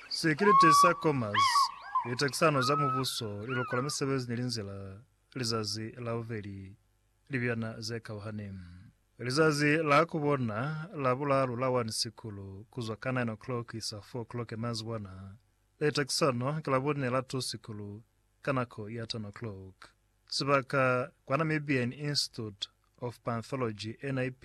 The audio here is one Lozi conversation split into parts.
Sekirite sa Comas, Litakisano za Mubuso, Lilokola Misebezi ni Linzila, Lizazi la Bubeli, Libyana ze Kauhani. Lizazi la ku bona la bulalu la 1 Sikulu, ku zwa ka 9 o'clock ku isa 4 o'clock ya mazibwana. Litakisano ki la bune la 2 Sikulu, ka nako ya 10 o'clock. Sibaka, kwa Namibian Institute of Panthology, NIP,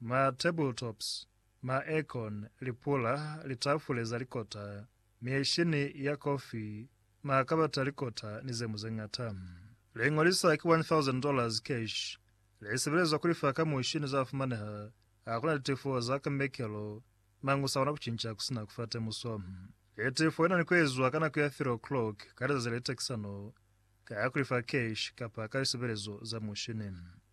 Ma tabletops, ma aircon, lipula, litafule za likota, mieshini ya kofi, ma kabata a likota ni zeñwi zeñata. Liñwi li sa ki $1,000 cash li sebelezwa kulifa ka mushini za fumaneha hakuna litifo za ka mekelo, mañi u sa kona kucinca kusina kufa temuso. Litifo li na ni kuezwa ka nako ya 3 o'clock ka lizazi le litakisano ka kulifa cash kapa ka lisebelezo za mushini.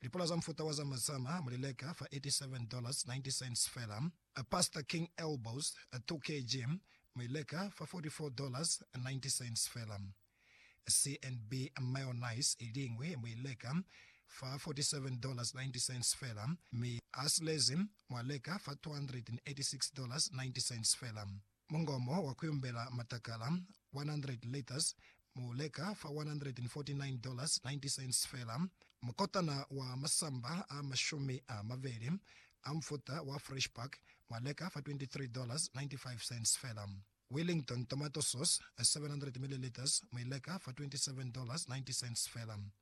Lipula za mufuta wa Zama Zama muli leka fa $87.90 fela. Pastor King Elbows, 2 kg, mu i leka fa $44.90 fela. CNB Mayonnaise i liñwi mu i leka fa $47.90 fela, mi Astley's mwa leka fa $286.90 fela. Mungomo wa kuyumbela matakala, 100 litres, mu leka fa $149.90 fela. Mukotana wa masamba a mashumi a mabeli a mufuta wa Fresh Pack mwa leka fa $23.95 fela. Wellington tomato sauce, 700 millilitres, mu i leka fa $27.90 fela.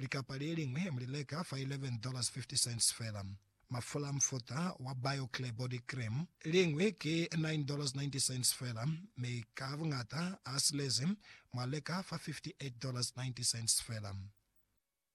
Likapa le liñwi mu li leka fa $11.50 fela. Mafula a mufuta wa BioClear Body Cream liñwi ki $9.90 fela, mi ka buñata a silezi mwa leka fa $58.90 fela.